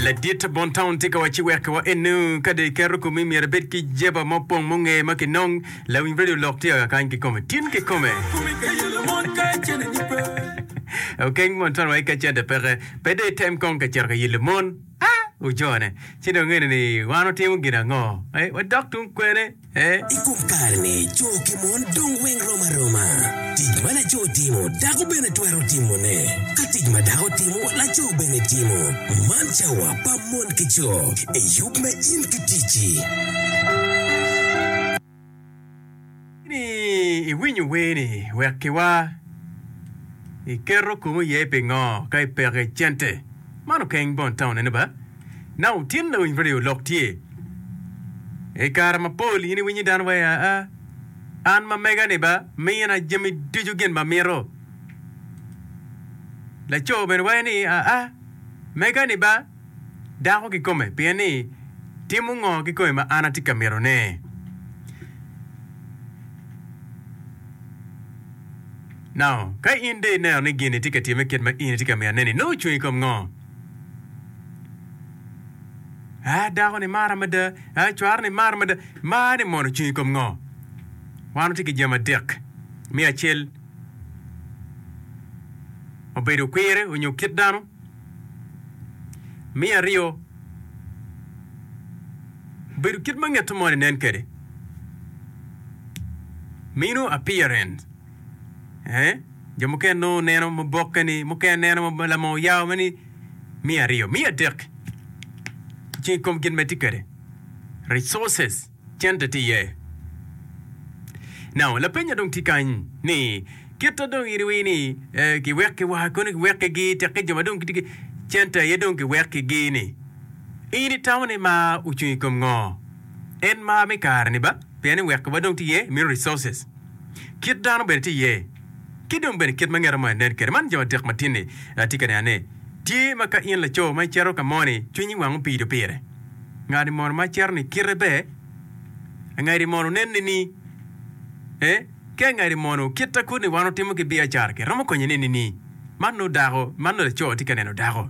Ladit Bontown tye ka wacci wekkiwa eno, Ka dong iketo komi myero ibed ki jeba ma opong munge ma kinong. Lawiny radio olok tye ka kany kikome, tin kikome. Okeng mon twero wai ka cente peke, pe dong item kong ka cito ka yillo mon. Ah! Wujone. Ci dong eno ni wan watimo gin ango? Eh, wadok tung kwene. e. I kom kare-ni, co ki mon dong weng rom aroma. Tic ma laco timo, dako bene twero timone. Ka tic ma dako timo, laco bene timo. Man cawa pa mon ki co. Eyub me in ki ticci. Ni iwinyo wer-ni, wekkiwa. Iketo komi iye pingo ka ipeko i cente? Man okeng bon taunene ba? Naka otin lawiny pa ryo lok tye. I kare mapol in iwinyo dano waci, Aa, an ma mega-ni ba mina jami ducu gin ma amito. Laco bene waco ni, Aa, mega-ni ba dako kikome pien ni timo ngo kikome ma an atye ka mitone? Naka ka in dong ineno ni gin-ni tye ka timme kit ma in itye ka mitone-ni, nongo ocung i kom ngo? Ah, dako ni mara mada. Ah, cwaro ni mara mada. Mar ni mono cung i kom ngo? Wan watye ki jami adek. Me acel, obedo kwire onyo kit dano. Me aryo, obedo kit ma ngete moni nen kwede. Meno appearance. Eeh jo mukene nongo neno mabokke ni mukene neno ma lama oyao ma ni miya aryo, miya adek ci i kom gin ma itye kwede resources cente tye iye. Now lapenya dong tye kany ni kite dong in iwinyo ni eh, kiwekki wa kono kiwekkigi tekke jo ma dong gitye ki cente aye dong kiwekkigi ni in itamo ni mar ocung i kom ngo? En mar me kare ni ba pien ni wekki wa dong tye iye mito resources. kit dano bene tye iye, ki dong bene kit ma ngeta mo enen kwede. Man jo adek matinni atye ka nenone, tye ma ka in laco ma icito ka moni, cwinyi wang opido pire. Ngani mono ma icito-ni kite ber? Angadi mono onenni ni ee? Ki angadi mono kit ta kudi wan watimo ki biacara-ki romo konye nenni ni man nongo dako, man nongo laco tye ka neno dako?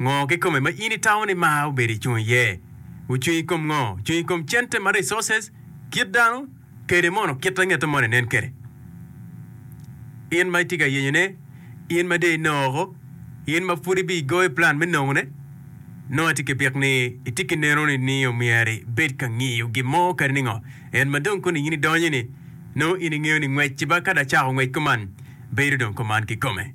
Ngo kikome ma in itamo ni mar obedo icung iye? Ocung ikom ngo? Ocung ikom cente ma resources, kit dano, kede mono kit angeto moni nen kede? In ma itye ka yenyo ne, in ma dee inoko, in ma pud ibi igoyo plan me nongo ne, nongo atye ki bik ni itye ki neno ni ni omyero ibed ka ngiyo gin mo kadi ni ngo. En ma dong koni in idonyo ni, nongo in ingeyo ni ngwec ci ba ka da cako ngwec kuman, bedo dong kuman kikome.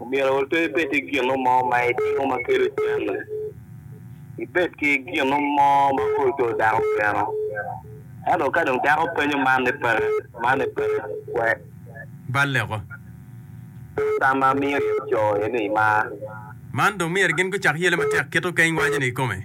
Omyero pe ibed ki gino mo ma itimo ma kelo cente. Ibed ki gino mo ma kor ocoo dako keno. Ento ka dong dako penyo man ni peke, man ni peke, wek. Balleko. Pien tam ma amiyo in coo eni imar. Man dong myero gin gucak yele matek kit okeny waco-ni kikome.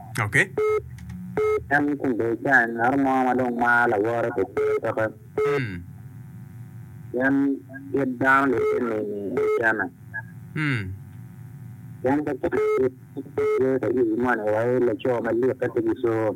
En ni kun dong icayo ngat mo ma dong maro lawote pi cer toke, pien kit dano lubbe nini i kene. Pien ka cwiny kit ma tye ka yubi moni wa, laco malitte pe gicur.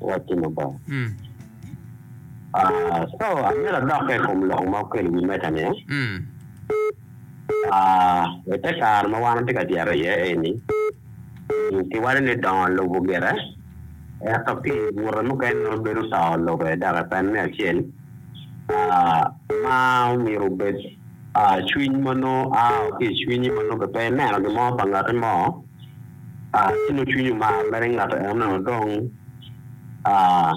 Watino Obongo. Mm. Ah, so amyero adokke i kom lok ma okelo i wi meja ni. Mm. Ah, i te kare ma wan watye ka tyero iye eni, kiwaco ni dongo lubo gire, ento pi bute mukene nongo bedo to lube dok epene me acel ah, ma omyero obed ah, cwiny ma nongo a ki i cwinyi ma nongo pe ineno gin mo pa ngati mo. aa, ci nongo cwinyi omar mere ngato eno-nu dong, aa,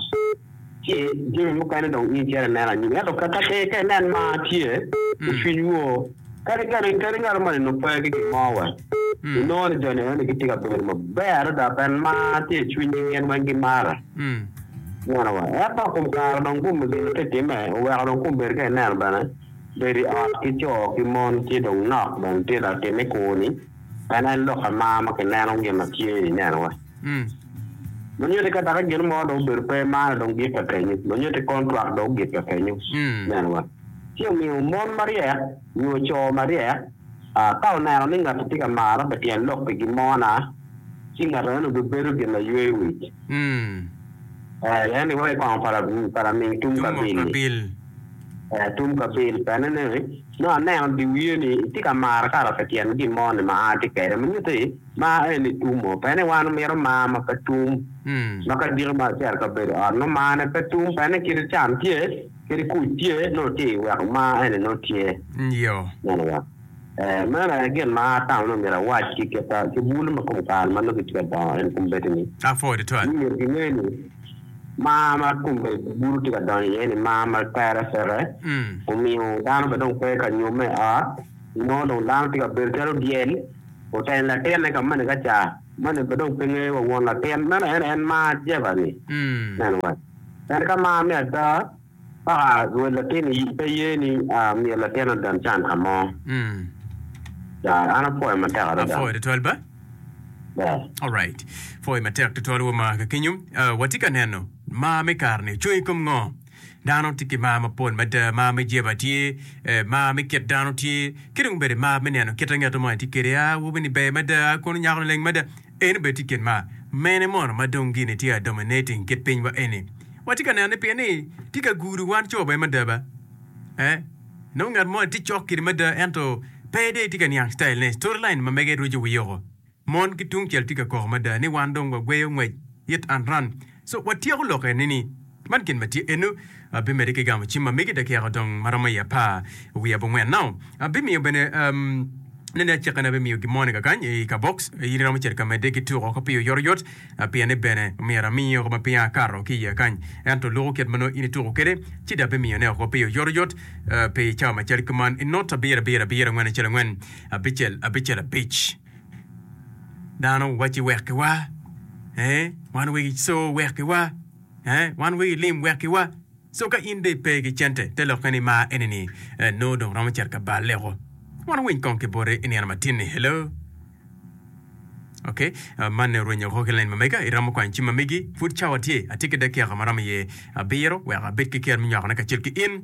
ci jami mukene dong in cito ineno anyim. Ento ka, ka, ka inen mar tye i cwiny woo, kadi, kadi, kadi ngato moni nongo pe ki gin mo wa, inongo ni jo-ni eno-ni gitye ka bedo maber adada pien mar tye i cwinygi, gin weng gimara. Ineno wa? Ento kum kare dong kum gin ma titimme oweko dong kum bedo ka ineno bene bedo i ot ki co ki mon tye dong nok bene tye dok timme kwo-ni. En aye lok amar ma kineno gin ma tye i nenowa. Lunyoti ka daka gin mo dong obedo pe mano dong gikke kenyo. Lunyoti kontrak dong gikke kenyo. Nenowa. Ci omiyo mon maryek nyo co maryek ka oneno ni ngat tye ka mara bene tyen lok pi gin mo na, ci ngat meno bibedo gin laywe wic. Eh, en iwaco kong para, para ming tum kabil-li. Eh, tum kabil. Pene ni. Nongo aneno dyewye ni itye ka maro kato pi tyen gin mo ni ma atye kede, ma nyuti mar en ni tum mo. Pene wan omito mar ma pe tum, ma ka diki mar acel ka bedo ot nongo mar ne pe tum. Pene kite can tye, kadi kuc tye nongo tye i weko mar eni nongo tye. Meno aye, ee, meno aye gin ma atamo ni omyero awac ki kita ki bulu ma kom kare ma nongo kitye ka dongo eni kom bedi ni, ni myero gine ni, Mar ma tunge bulu tye ka donyo iye-ni mar ma tere peke, omiyo dano bene dong pe ka nyomme i ot. Inongo dong dano tye ka bedo calo dyel oteno latinne ka moni ka ca. Moni bene dong pe ngeyo wa won latin. Meno en aye en mar Jehovah-ni. Neno wa, en ka mar me ada. A Rwed latin i pe ye ni a myel latin adada nican ka mo. Da, an apwoyo matek adada. Apwoyo tutwal ba? Da. Alright. Pwoyo matek tutwal wa ma ka kenyo. Uh, watye ka neno mar me kare-ni ocung i kom ngo? Dano tye ki mar mapol mada, mar me jeba tye, eh, mar me kit dano tye, ki dong bene mar me neno kit angeto mo en tye kede. A, awobi-ni ber mada, a kono nyako-ni leng mada. Eni bene tye kit mar mene mono ma dong gin ni tye a dominating kit pinywa eni? Watye ka neno ni pien ni tye ka gudo wan co bene mada ba? Ee. Inongo ngat moni tye cok kidi mada ento pe dong etye ka niang style ne. Storyline ma mege rweco wii oko. Mon ki tungcel tye ka koko mada ni wan dong wagweyo ngwec it and run. So watyeko lok eni ni, Man gin ma tye eno, abimede ki gamo cim ma megi dakika odong ma romo i apar wiye abongwen nao. Abimiyo bene, nene acikane abimiyo gimoni kakany i kabox, in iromo cito ka medde ki tuk oko pi oyotoyot, pien ni bene myero ami oko ma pinga akato ki iye kany. Ento luku kit ma nongo in ituku kede, ci da abimiyo ne oko pi oyotoyot pi cawa macel kuman, i not abiro abiro abiro angwen acel angwen abicel abicel abic. Dano wacci wekkiwa, ee, wan wegi co wekkiwa, ee, wan wegi lim wekkiwa. So ka in dong ipe ki cente, te lokke ni mar eni-ni ee, nongo dong romo cito ka bal leko. Wan winy kong ki bote i nino matin-ni. Hello? Okey, ah, manni orwenyo woko ki lain ma mega. Iromo kwanyo cim ma megi? Pud cawa tye. Atye ki dakika ma romo iye abiro wek abed ki ker me nywakone kacel ki in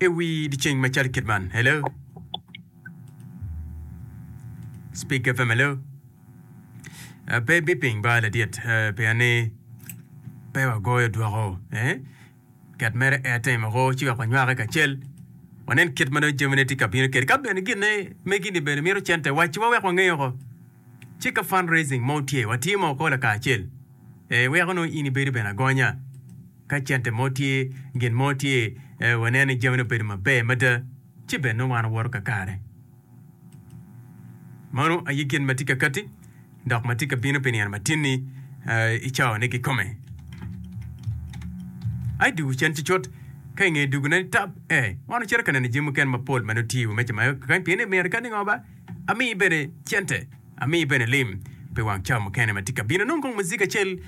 i wi dyeceng macalo kit man. Hello? Speaker pa malo. Ah, Pe biping ba ladit eh, pien ni pe wagoyo dwoko eh, ket mere ete moko ci wek wanywake kacel wanen kit ma dong jamine tye ka bino kede ka bene gine megini bene mito cente wacciwa wek wangeyo oko ci ka fundraising mo tye watye mo ko lakacel eh, weko nongo in ibedo bene agonya ka cente mo tye gin mo tye eh, wanen ni jamine obedo maber mada ci bed nongo an awoto kakare. Mano aye gin ma tye ka katti dok ma tye ka bino pi nino matin-ni i cawane kikome. A i dwogo cen cucut, ka i nge dwogo-ne ni tab, e, wan ocito ka neno jami mukene mapol ma nongo tye i wi meja ma kany pien ni myero kadi ngo ba, amiyi bene cente, amiyi bene lim pi wang cawa mukene ma tye ka bino, nongo kong muziga acel.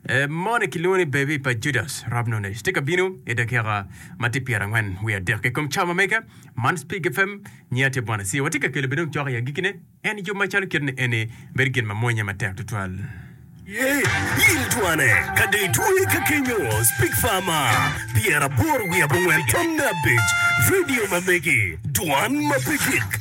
E moni kilwongo ni Baby pa Judas Rabnones tye ka bino i dakika ma tye pyerangwen wiye adek i kom cawa ma mege. Man Spig FM, nyiya tye Bwana Sia. Watye ka kelo bene ocoko i agikine en yub macalo kit ni eni bedo gin ma mwonye matek tutwal. Ye yil twane ka dong itweye ka kenyo Spig Fama pyeraboro wiye abongwen tamne abic, radio ma mege, dwan ma pe gik.